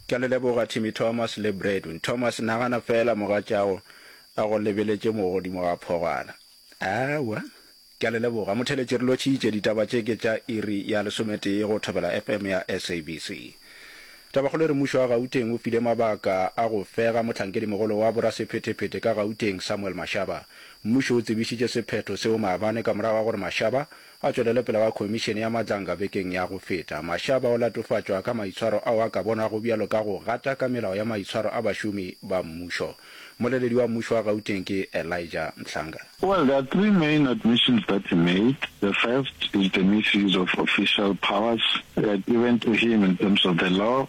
Ke a le leboga Timmy Thomas le Bradwin Thomas. Nagana feela mogatšago a go lebeletše mo godimo ga phogwana. Aowa. Ke a le leboga motheletši. Re lotšhitše ditaba tše ke tša iri ya lesometee go Thobela FM ya SABC. Tabakgolo e re mmušo wa Gauteng o file mabaka a go fega mohlankedi-mogolo wa borasephetephete ka Gauteng Samuel Mashaba. Mmušo o tsebišitše sephetho seo maabane ka morago ga gore Mashaba A tšwelele pele ga Khomišene ya Matlanga bekeng ya go feta, Mashaba o latofatšwa ka maitshwaro ao a ka bonwago bjalo ka go gata ka melao ya maitshwaro a bašomi ba mmušo. Mmoleledi wa mmušo wa Gauteng ke Elijah Mhlanga. Well, there are three main admissions that he made. The first is the misuse of official powers given to him in terms of the law.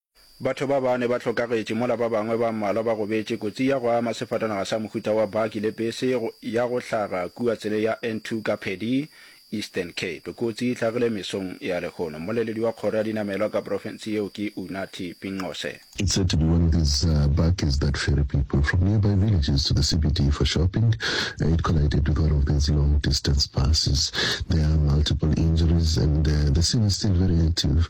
Batho ba bane ba hlokagetše mola ba bangwe ba mmalwa ba gobetše kotsi ya go ama sefatanaga sa mohuta wa baki le bese ya go hlaga kua tseleng ya N2 ka Pedi, Eastern Cape. Kotsi e hlagile mesong ya lehono. Mmoleledi wa kgoro ya dinamelwa ka profense yeo ke Unathi Pinqose. It's said to be one of these bakkies that ferry people from nearby villages to the CBD for shopping. It collided with one of these long distance buses. There are multiple injuries and the scene is still very active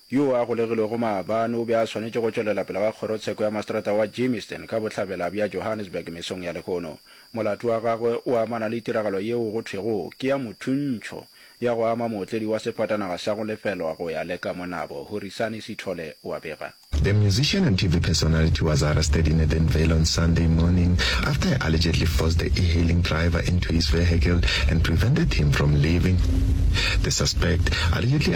Yoo a golegilwego maabane o be a swanetše go tšwelela pele ga kgorotsheko ya maseterata wa Germiston ka bohlabela bja Johannesburg mesong ya lehono. Molato wa gagwe o amana le tiragalo yeo go thwego ke ya mothuntšho ya go ama mootledi wa sefatanaga sa go lefelwa go ya le ka mo nabo, Horisani Sithole wa bega. The musician and TV personality was arrested in Edenvale on Sunday morning after he allegedly forced the e-hailing driver into his vehicle and prevented him from leaving. The suspect allegedly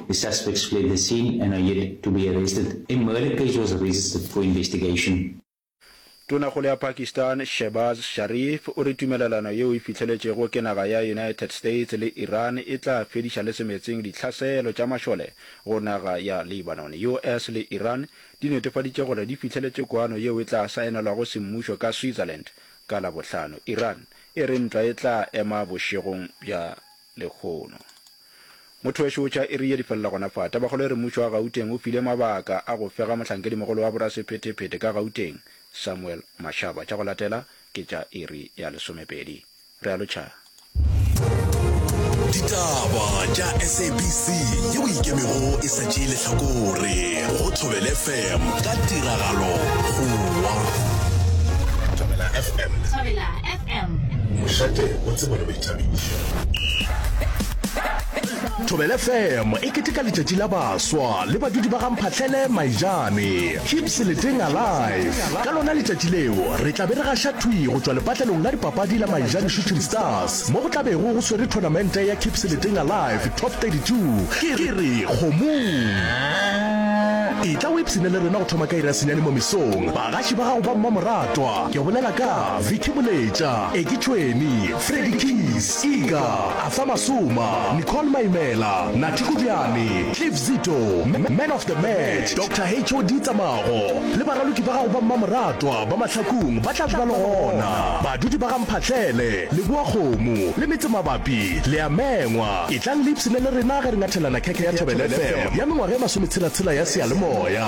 The suspects fled the scene and are yet to be arrested. A murder case was registered for investigation. Tonakgolo ya Pakistan Shehbaz Sharif o re tumelelano yeo e fihleletšego ke naga ya United States le Iran e tla fediša le semetseng dihlaselo tša mašole go naga ya Lebanon. US le Iran di netefaditše gore di fihleletše kwano yeo e tla saenelwago semmušo ka Switzerland ka Labohlano. Iran e re ntwa e tla ema bošegong bja. Lehono. Motho wešo o tšha iri ye di felela gona fa. Tabakgolo e re mmušo wa Gauteng o file mabaka a go fega mohlankedimogolo wa borasephetephete ka Gauteng, Samuel Mashaba. Tša go latela ke tša iri ya lesomepedi. Realo Tšhaba. Ditaba tša SABC ye o ikemego e sa tšee lehlakore go Thobela FM ka tiragalo go wa. Thobela FM. Mošate o tsebwa le boithabišo. Thobela FM e keteka letšatši la baswa le badudi ba ga Mphahlele Maijane. Keep Seleteng Alive. Ka lona letšatši leo re tla be re gaša thwi go tšwa lepatlelong la dipapadi la Maijane Shooting Stars mo go tla bego go swere thonamente ya Keep Seleteng Alive Top 32. Ke re kgomong! Etla o ipshine le rena go thoma ka iri ya senyane mo mesong. Bagaši ba gago ba mmamoratwa, ke bolela ka. Vicky Moletša, Eki Tšhweni, Freddy Keys, Iga, Arthur Masoma, Nicole Maimela, Nathi Kodiane, Cliff Zito, Man of the Match, Doctor HOD Tsamago le baraloki ba gago ba mmamoratwa ba Mahlakung ba tla ba le gona. Badudi ba ga Mphahlele, Leboa Kgomo le metsemabapi le a mengwa. Etlang le ipshinele rena ge re ngathelana khekhe ya Thobela FM ya mengwaga e masometshela-tshela ya seyalemoya.